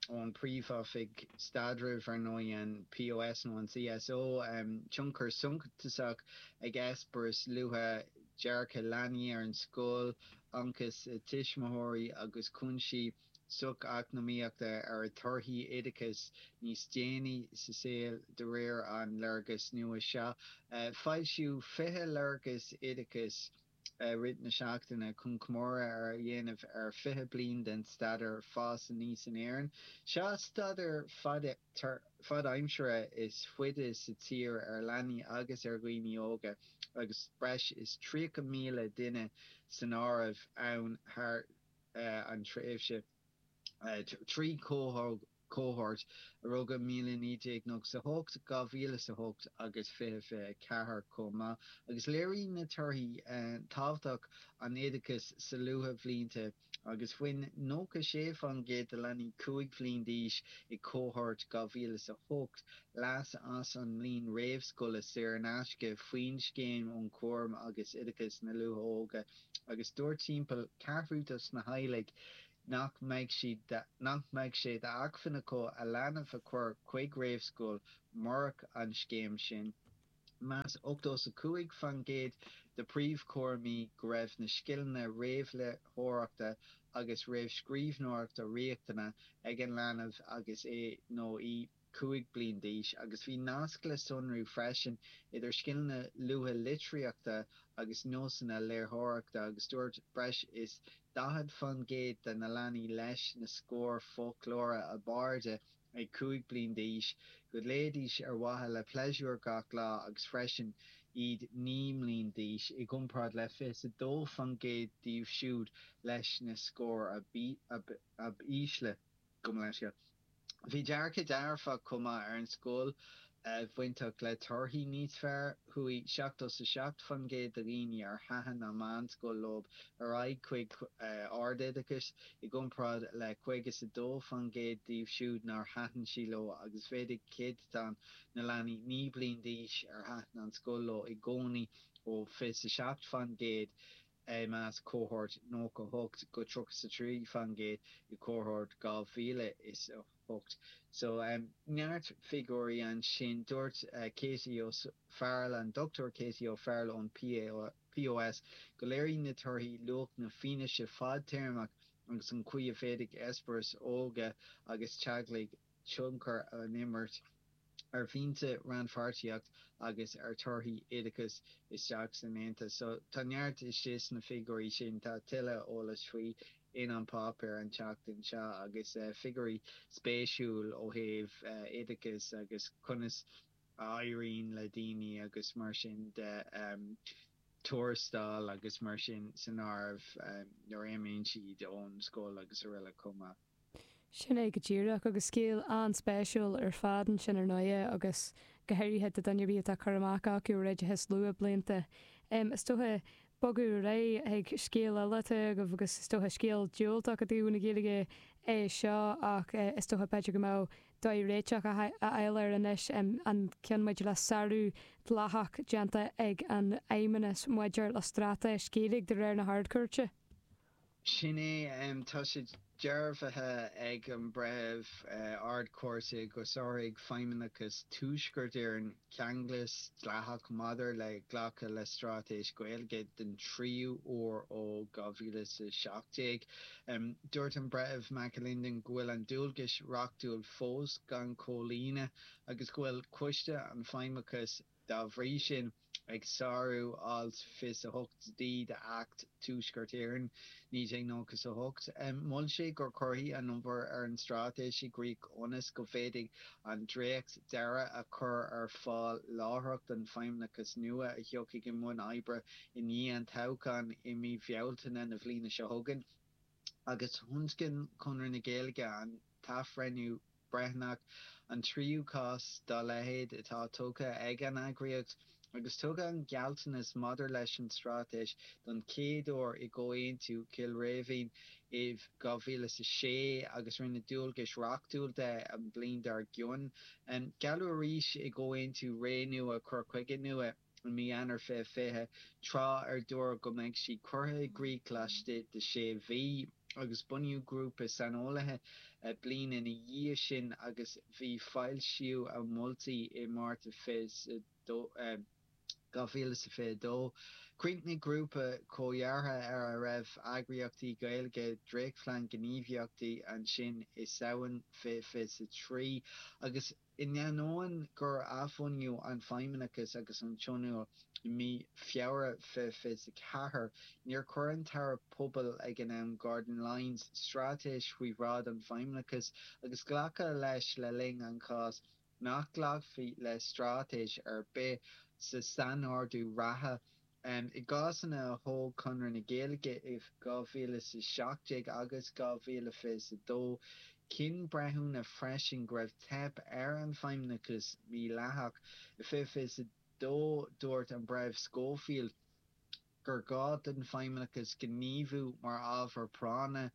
ón bPríomhoifig Staidrimh, ar ndóigh, an POS nó an CSO. Tionchar suntasach ag eispéiris luatha dearcadh leanaí ar an scoil, ionchas tuismitheoirí agus cúinsí socheacnamaíochta ar thorthaí oideachais níos déanaí sa saol de réir an léargais nua seo. Foilsíodh 20 léargas oideachais i rith na seachtaine chun comóradh a dhéanamh ar 20 bliain den Staidéar Fás Aníos in Éirinn. Seo staidéar fadaimseartha is faide sa tír ar leanaí agus ar dhaoine óga agus breis is 30,000 duine san áireamh ann thar an tréimhse trí chohórt a rugadh i 1998, 2008 agus 2024 chomh maith, agus léiríonn na torthaí tábhacht an oideachais sna luathbhlianta agus bhain 96% de leanaí 5 bhliain d'aois i gcohórt 2008 leas as an mbliain réamhscoile saor in aisce faoin Scéim um Chúram agus Oideachas na Luath-Óige agus dúirt timpeall ceathrú dos na theaghlaigh nach mbeadh sé d'acmhainn acu a leanbh a chur chuig réamhscoil murach an scéim sin. Mheas ochtó is a cúig faoin gcéad de príomhchúramóirí go raibh na scileanna réamhléitheoireachta agus réamhscríbhneoireachta riachtanach ag an leanbh agus é nó í ag 5 bliain d'aois agus bhí nasc le sonrú freisin idir scileanna luaithe litearthachta agus nósanna léitheoireachta agus dúirt breis is 40 faoin gcéad de na leanaí leis na scóir foclóra ab airde ag 5 bliain d'aois go léidís ar mhaithe le pléisiúr gach lá agus freisin iad 9 mbliain d'aois i gcomparáid le 22 faoin gcéad díobh siúd leis na scóir ab ísle gabh mo leithscéal Bhí dearcadh dearfach chomh maith ar an scoil bainteach le torthaí níos fearr. Chuaigh seachtó 's a seacht faoin gcéad de dhaoine ar thaitin an meánscoil leo ar aghaidh chuig ardoideachas, i gcomparáid le caoga 's a dó faoin gcéad díobh siúd nár thaitin sí leo agus mhéadaigh céadatán na leanaí naoi bliain d'aois ar thaitin an scoil leo i gcónaí ó fiche 's a seacht faoin gcéad I measc cohórt nócha hocht go tríocha 's a trí faoin gcéad i gcohórt dhá mhíle is a hocht so neart figiúirí ansin. Dúirt Katie O Farrell, an Dr Katie O Farrell ón CSO, go léiríonn na torthaí luach na fianaise fadtéarmach agus an chaoi a bhféadfadh eispéireas óige agus teaghlaigh a tionchar á imirt ar mhianta, rannpháirtíocht agus ar thorthaí oideachais isteach san Aontas. So, tá neart istigh sna figiúirí sin. Tá tuilleadh eolais faoi in An Páipéar an tseachtain seo agus figiúirí spéisiúil ó thaobh oideachais agus conas a éiríonn le daoine agus mar sin de, tuarastail agus mar sin de, san áireamh nuair a imíonn siad ón scoil agus aroile chomh maith. Sin é go díreach, agus scéal an-spéisiúil ar fad ansin ar ndóigh é, agus go háirithe do dhuine ar bith a bhfuil cur amach acu ar oideachas luath blianta. Is dócha, bogadh ar aghaidh chuig scéal eile atá agaibh, agus is dócha scéal diúltach i dtaobh na Gaeilge é seo, ach is dócha b'fhéidir go mbeadh dóigh réiteach a fháil air anois, an gceann maidir le sárú dleathach déanta ag an fheidhmeannas maidir le straitéis Ghaeilge de réir na hArd-Chúirte. Sin é. Tá sé dearbhaithe ag an Breitheamh Ardchúirte gur sháraigh Feidhmeannachas Thuaisceart Éireann ceanglas dleathach maidir le glacadh le Straitéis Ghaeilge den tríú huair ó 2017. Dúirt an Breitheamh McAlinden go bhfuil an dualgas reachtúil fós gan chomhlíonadh agus go bhfuil Coiste an Feidhmeannachais, Dá bhrí sin, ag sárú Alt 28D d'Acht Thuaisceart Éireann, 1998, mhol sé go gcuirfí an obair ar an Straitéis i gcrích ionas go bhféadfaí an dréacht deiridh a chur ar fáil láithreach don Feidhmeannachas nua a thiocfaidh i mbun oibre i ndiaidh an toghcháin i mí Bhealtaine na bliana seo chugainn. agus thionscain Conradh na Gaeilge an t-athbhreithniú breithiúnach, an tríú cás dá leithéid atá tugtha ag an eagraíocht, agus tugadh an gealltanas maidir leis an straitéis don chéad uair i gComhaontú Chill Rímhinn in 2006 agus rinneadh dualgas reachtúil de an bhliain dár gcionn. Gealladh arís i gComhaontú Ré Nua Cur Chuige Nua. i mí Eanáir 2020, tráth ar dúradh go mbeadh sí curtha i gcrích laistigh de sé mhí, agus bunaíodh grúpa saineolaithe bliain ina dhiaidh sin agus bhí foilsíú a moltaí i Márta 2022. Chríochnaigh grúpa comhdheartha ar a raibh eagraíochtaí Gaeilge dréachtphlean gníomhaíochta ansin i Samhain 2023 agus. In ainneoin gur athbhunaíodh an feidhmeannachas agus an tionól i mí Feabhra 2024, níor chuir an tAire Pobal ag an am, Gordon Lyons, straitéis faoi bhráid an feidhmeannachais agus glacadh leis le linn an cháis nach nglacfaí le straitéis ar bith sa sainordú reatha I gcásanna a thóg Conradh na Gaeilge i 2017 agus 2022, chinn breithiúna freisin go raibh teip ar an bhfeidhmeannachas mídhleathach. I 2022 dúirt an Breitheamh Schofield gur ghá don feidhmeannachas gníomhú mar ábhar práinne.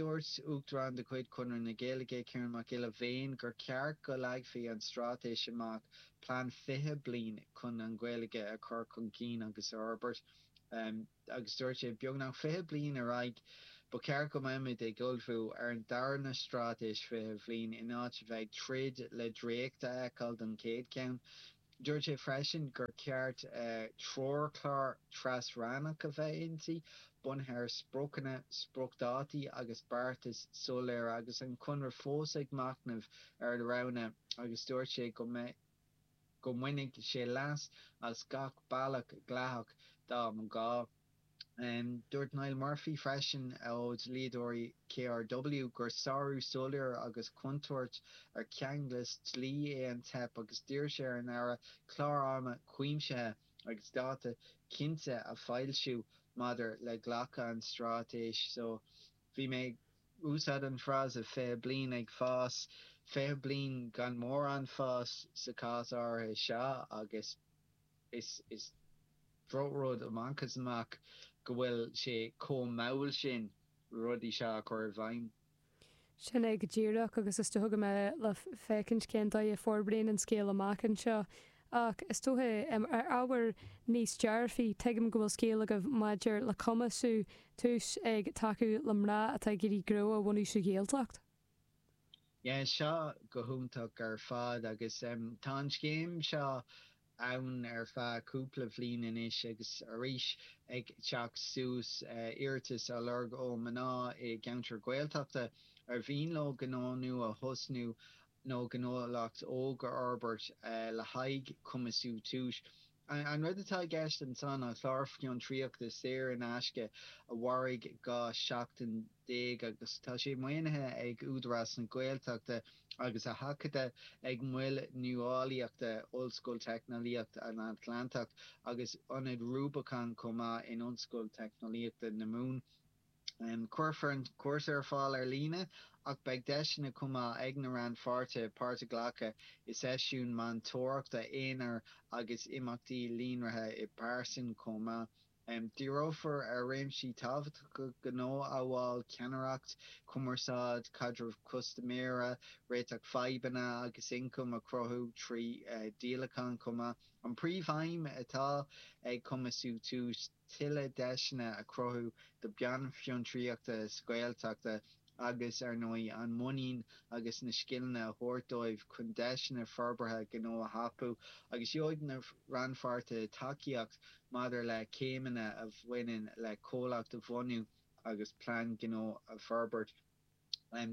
Dúirt Uachtarán de chuid Chonradh na Gaeilge, Ciarán Mac Giolla Bhéin, gur cheart go leagfaí an straitéis amach Plean 20 bliain chun an Ghaeilge a chur chun cinn agus a fhorbairt agus dúirt sé, Beagnach 20 bliain ar aghaidh, ba cheart go mbeimis ag ullmhú ar an darna Straitéis 20 Bhliain in áit a bheith ag troid le dréacht a fheiceáil don chéad cheann. Dúirt sé freisin gur cheart treoirchlár tras-rannach a bheith inti bunaithe ar spriocanna, spriocdhátaí agus beartais soiléire agus an Conradh fós ag machnamh ar a roghanna agus dúirt sé go mbainfidh sé leas as gach bealach dleathach dá mba ghá. Dúirt Niall Murphy freisin ó dhlíodóirí KRW gur sárú soiléir agus contúirt ar cheanglas dlí é an teip agus d'iarr sé ar an Aire clár ama cuimsithe, agus dáta cinnte a foilsiú maidir le glacadh an straitéis so. Bhí mé ag úsáid an frása fiche bliain ag fás, fiche bliain gan mórán fás sa cás áirithe seo agus is is drochrud amach is amach go bhfuil sé chomh mall sin rudaí seo a chur i bhfeidhm. Sin é go díreach, agus is dócha go mbeidh le féachaint cén dóigh a forbraíonn an scéal amach anseo. Ach is dócha, ar ábhar níos dearfaí, tuigim go bhfuil scéal agaibh maidir le Cumasú Tús ag tacú le mná atá ag iarraidh gnó a bhunú sa Ghaeltacht. Yeah, seo go hiontach ar fad agus tá an scéim seo ann ar feadh cúpla bhliain anois agus arís ag teacht suas iarratais á lorg ó mná i gceantair Ghaeltachta ar mhian leo gnó nua a thosnú nó gnólacht óg a fhorbairt le haghaidh Cumasú Tús. An rud atá i gceist ansan ná clár fiontraíochta saor in aisce a mhairfidh dhá seachtain. déag agus tá sé maoinithe ag Údarás na Gaeltachta agus á thacú ag Mol Nuálaíochta Ollscoil Teicneolaíocht an Atlantach agus Ionad Rubicon chomh maith in Ollscoil Teicneolaíochta na Mumhan. Cuirfear an cúrsa ar fáil ar líne ach beidh deiseanna chomh maith ag na rannpháirtithe páirt a ghlacadh i seisiúin meantóireachta aonair agus imeachtaí líonraithe i bpearsan chomh maith. Díreofar ar réimsí tábhachtacha gnó amhail ceannaireacht, cumarsáid, caidreamh custaiméara, réiteach fadhbanna agus ioncam a chruthú trí dhíolacháin chomh maith. An príomhaidhm atá ag Cumasú tús tuilleadh deiseanna a chruthú do bhanfhiontraíocht sa Ghaeltacht agus, ar ndóigh, an muinín agus na scileanna a thabhairt dóibh chun deiseanna forbartha gnó a thapú, agus gheobhaidh na rannpháirtithe tacaíocht maidir le céimeanna a bhaineann le comhlacht a bhunú agus plean gnó a fhorbairt.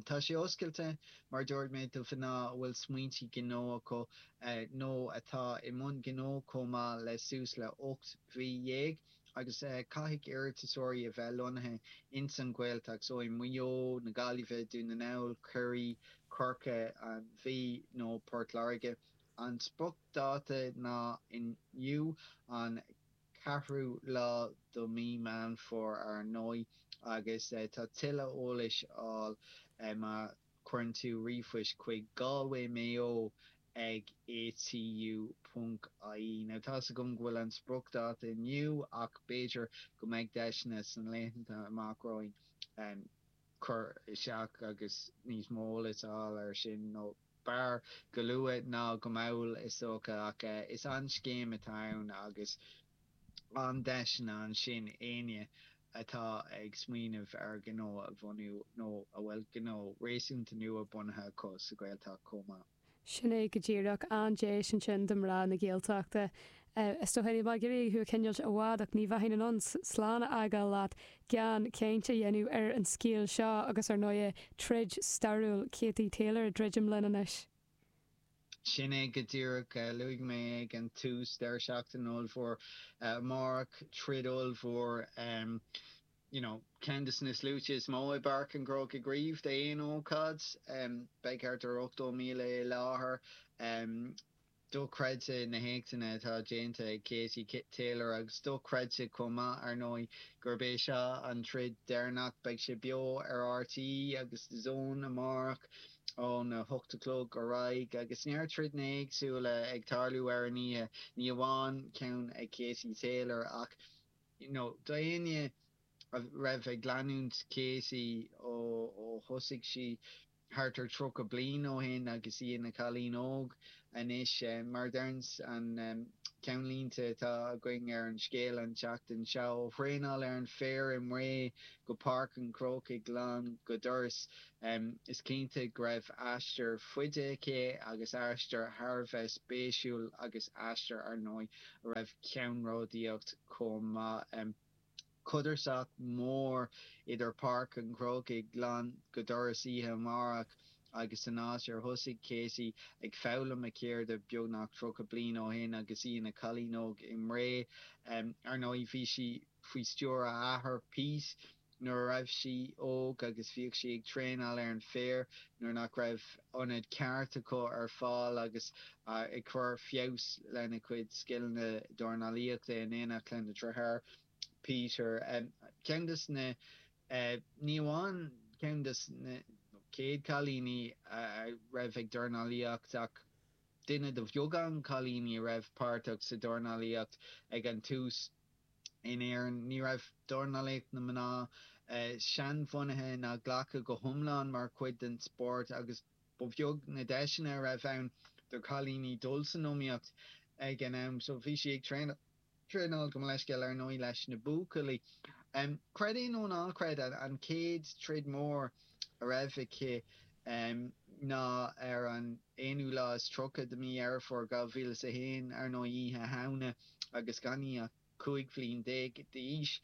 Tá sé oscailte, mar a dúirt mé, do mhná a bhfuil smaointe gnó acu nó atá i mbun gnó chomh maith le suas le hocht mí dhéag. agus caithfidh iarratasóirí a bheith lonnaithe ins an Ghaeltacht, so i Maigh Eo, i nGaillimh, Dún na nGall, Ciarraí, Corcaigh, an Mhí nó Port Láirge. An spriocdáta ná inniu, an ceathrú lá de mhí Mheán Fómhair, ar ndóigh, agus tá tuilleadh eolais ar fáil má. chuireann tú ríomhphost chuig Galway Mayo ag ATU.ie. Now tá's agam go bhfuil an spriocdháta inniu ach b'fhéidir go mbeidh deiseanna sna laethanta amach romhainn cur isteach agus níos mó eolais a fháil ar sin nó b'fhearr go luath ná go mall is dócha ach is an-scéim atá ann agus an-deiseanna ansin d'éinne atá ag smaoineamh ar ghnó a bhunú nó a bhfuil gnó réasúnta nua bunaithe acu sa Ghaeltacht chomh maith. Sin é go díreach. An-deis ansin do mhná na Gaeltachta. Is dócha níl mé ag iarraidh thú a choinneáil i bhfad ach ní bheinn in ann slán a fhágáil leat gan caint a dhéanamh ar an scéal seo agus, ar ndóigh, troid stairiúil Katie Taylor ag druidim linn anois. Sin é go díreach. Luaigh mé ag an tús, deireadh seachtaine ollmhór amárach, troid ollmhór, you know, ceann de na sluaite is mó i bPáirc an Chrócaigh riamh d'aon ócáid. Beidh thart ar 80,000 i láthair. Dochreidte na héachtanna atá déanta ag Katie Taylor agus dochreidte chomh maith, ar ndóigh, gurb é seo an troid deireanach. Beidh sé beo ar rte agus DAZN amárach. ón a hocht a chlog ar aghaidh agus neart troideanna éagsúla ag tarlú ar an oíche, ní amháin ceann ag Katie Taylor ach you know do éinne a raibh ag leanúint Katie ó thosaigh sí thart ar tríocha bliain ó shin agus í ina cailín óg anois mar a deireann an ceannlínte atá againn ar an scéal an tseachtain seo ó thraenáil ar an bhféar i mBré go Páirc an Chrócaigh lán go doras Is cinnte go raibh aistear fada aici agus aistear thar a bheith spéisiúil agus aistear, ar ndóigh, a raibh ceannródaíocht chomh maith ann. Codarsnacht mhór idir Páirc an Chrócaigh lán go doras oíche amárach agus an áit ar thosaigh Katie ag foghlaim a ceirde beagnach 30 bliain ó shin agus í ina cailín óg i mBré. Ar ndóigh, bhí sí faoi stiúir a hathar, Pete, nuair a raibh sí óg agus bhíodh sí ag traenáil ar an féar nuair nach raibh ionad ceart acu ar fáil agus ag cur feabhas lena cuid scileanna dornálaíochta in éineacht lena deartháir, Peter. Ceann dos na, ní amháin ceann dos na chéad cailíní a raibh ag dornálaíocht ach duine do bheagán cailíní a raibh páirteach sa dornálaíocht ag an tús. in Éirinn, ní raibh dornálaíocht na mná seanbhunaithe ná glactha go hiomlán mar chuid den spórt agus ba bheag na deiseanna a raibh ann do chailíní dul san iomaíocht ag an am so bhí sí ag traenáil, gabh mo leithscéal, ar ndóigh leis na buachaillí. Creid é nó ná creid, an chéad troid mór a raibh aici ná ar an aonú lá is tríocha de mhí Dheireadh Fómhair 2001, ar ndóigh, Oíche Shamhna, agus gan í ach cúig bhliain déag d'aois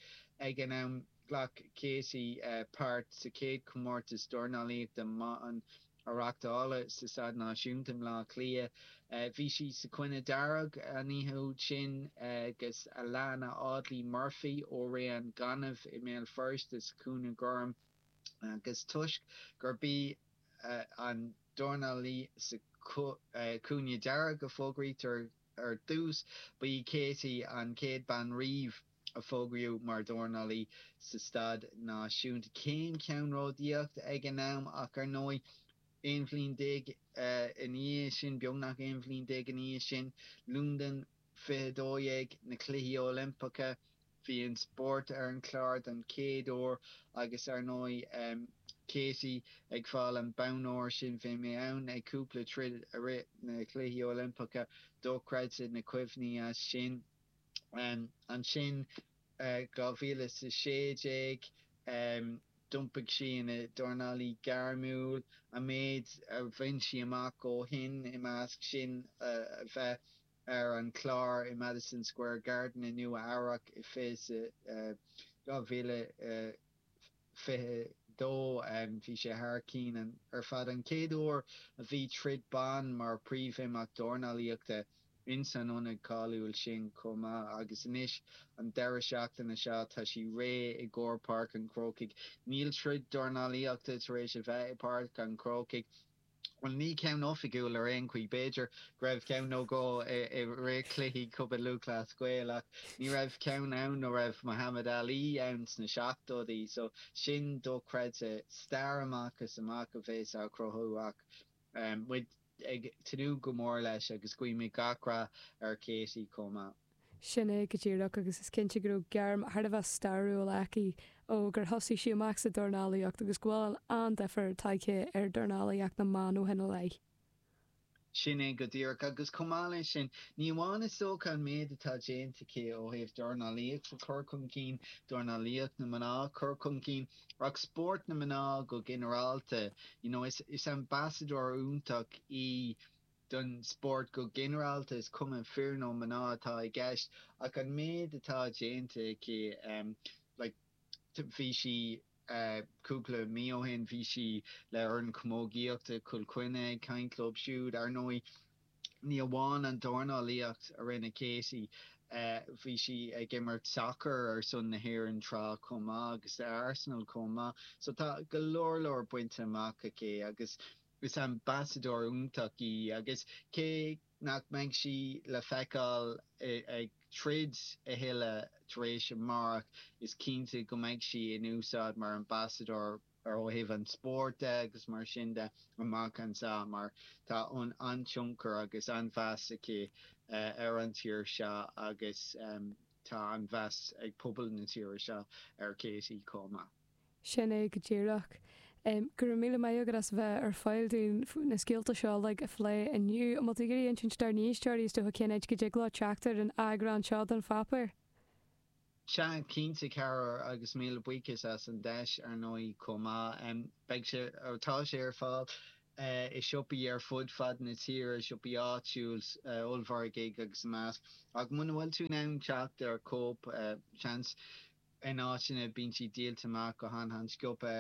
ag an am. Ghlac Katie páirt sa chéad chomórtas dornálaíochta na mban a reáchtáladh sa Staid Náisiúnta i mBleá Cliath. Bhí sí sa chúinne dhearg an oíche úd sin agus Alanna Audley Murphy ó Rae an Ghainimh i mBéal Feirste sa chúinne gorm. agus toisc gurb í an dornálaí sa chúinne dearg a fógraítear ar dtús, ba í Katie an chéad bean riamh a fógraíodh mar dhornálaí sa staid náisiúnta. Céim cheannródaíoch ag an am ach ar ndóigh, aon bhliain déag ina dhiaidh sin, beagnach aon bhliain déag ina dhiaidh sin, Londain, 2012, na Cluichí Oilimpeacha, bhí an spórt ar an chlár don chéad uair agus ar ndóigh Katie ag fáil an bonn óir sin. Bhí mé ann ag cúpla troid i rith na Cluichí Oilimpeacha, dochreidte na cuimhní as sin. Ansin 2016 d'iompaigh sí ina dornálaí gairmiúil. An méid a bhain sí amach ó shin i measc sin a bheith. ar an chlár i Madison Square Garden i Nua Eabhrac i fiche 2022. Bhí sé thar cinn ar fad an chéad uair a bhí troid ban mar príomhimeacht dornálaíochta ins an ionad cáiliúil sin chomh maith agus anois an deireadh seachtaine seo tá sí réidh i gcomhair Páirc an Chrócaigh. Níl troid dornálaíochta tar éis a bheith i bPáirc an Chrócaigh Bhuel, ní ceann oifigiúil ar aon chaoi. B'fhéidir go raibh ceann nó dhó i rith cluichí Chumann Lúthchleas Gael ach ní raibh ceann ann ó raibh Muhammad Ali ann sna seachtóidí. So, sin dochreidte. Stair amach is amach a bheas á chruthú ach muid ag tnúth go mór leis agus guímid gach rath ar Katie chomh maith. Sin é go díreach agus is cinnte go raibh gairm thar a bheith stairiúil aici ó gur thosaigh sí amach sa dornálaíocht agus go bhfuil an-difir tagtha ar dornálaíocht na mban ó shin i leith. Sin é go díreach agus chomh maith leis sin, ní amháin is dócha an méid atá déanta aici ó thaobh dornálaíocht a chur chun cinn, dornálaíocht na mná a chur chun cinn, ach spórt na mná go ginearálta, you know, is ambassadóir iontach í. don spórt go ginearálta, is cuma fir nó mná atá i gceist, ach an méid atá déanta aici, like bhí sí cúpla mí ó shin, bhí sí le fhoireann camógaíochta Chill Chainnigh ag caint leo siúd. Ar ndóigh, ní amháin an dornálaíocht a rinne Katie, bhí sí ag imirt sacair ar son na hÉireann tráth chomh maith agus le Arsenal chomh maith. So tá go leor leor bainte amach aici agus Is ambasadóir iontach í agus cé nach mbeidh sí le feiceáil ag troid a thuilleadh tar éis amárach, is cinnte go mbeidh sí in úsáid mar ambasadóir ó thaobh an spóirt de agus mar sin de amach anseo mar tá an-tionchar agus an-mheas aici ar an tír seo agus tá an-mheas ag pobal na tíre seo ar Katie chomh maith. Sin é go díreach. Go raibh míle maith agat as a bheith ar fáil dúinn na scéalta seo uilig a phlé inniu. An bhfuil tú ag iarraidh a insint dár n-éisteoirí is dócha cén áit go dtig leo teacht ar an eagrán seo den pháipéar? Sea, cinnte Carol, agus míle buíochas as an deis, ar ndóigh, chomh maith. Beidh sé, tá sé ar fáil i siopaí ar fud fad na tíre, siopaí áitiúil, ollmhargaí agus a measc. Ach muna bhfuil tú in ann teacht ar chóip, seans In áiteanna bíonn siad díolta amach go han-sciobtha.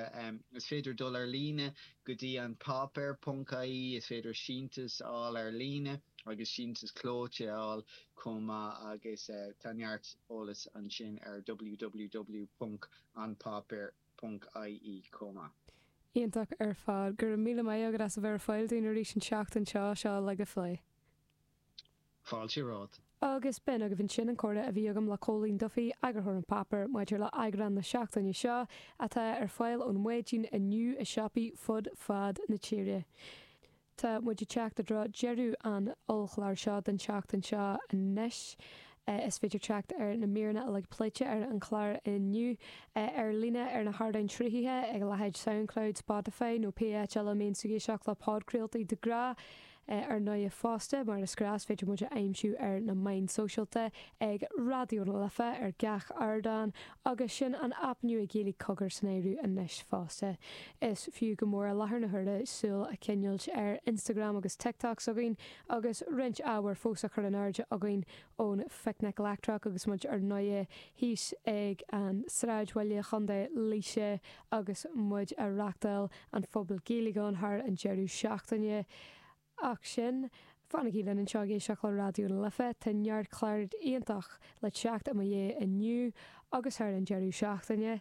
Is féidir dul ar líne go dtí an páipéar ponc ie. Is féidir síntiús a fháil ar líne agus síntiús clóite a fháil chomh maith agus tá neart eolais ansin ar www.anpaipear.ie chomh maith. Iontach ar fad. Go raibh míle maith agat as a bheith ar fáil dúinn arís an tseachtain seo, seo uilig a phlé. Agus b'in agaibh ansin an comhrá a bhí agam le Cóilín Duffy, eagarthóir An Páipéar, maidir le heagrán na seachtaine seo, atá ar fáil ón mhaidin inniu i siopaí fud fad na tíre. Tá muid ag teacht i dtreo deireadh an ollchlár seo don tseachtain seo anois. Is féidir teacht ar na míreanna uilig pléite ar an chlár inniu ar líne ar na hardáin sruthaithe ag a leithéid Soundcloud, Spotify nó pé áit eile a mbíonn tú ag éisteacht le podchraoltaí de ghnáth. Ar ndóigh fosta, mar is gnách, féidir muid a aimsiú ar na meáin sóisialta, ag Raidió na Life, ar gach ardán, agus sin an aip nua Ghaeilge Cogar san áireamh anois fosta. Is fiú go mór i láthair na huaire súil a choinneáil ar Instagram agus TikTok s'againn, agus roinnt ábhair fós á chur in airde againn ón Phicnic Leictreach agus muid ar ndóigh thíos ag an Sráidbhaile Chontae Laoise agus muid a' reachtáil an Phuball Gaeilge ann thar an deireadh seachtaine. Ach sin, fanaigí linn anseo ag éisteacht le Raidió na Life, tá neart clár iontach le teacht i mo dhiaidh inniu agus thar an deireadh seachtaine.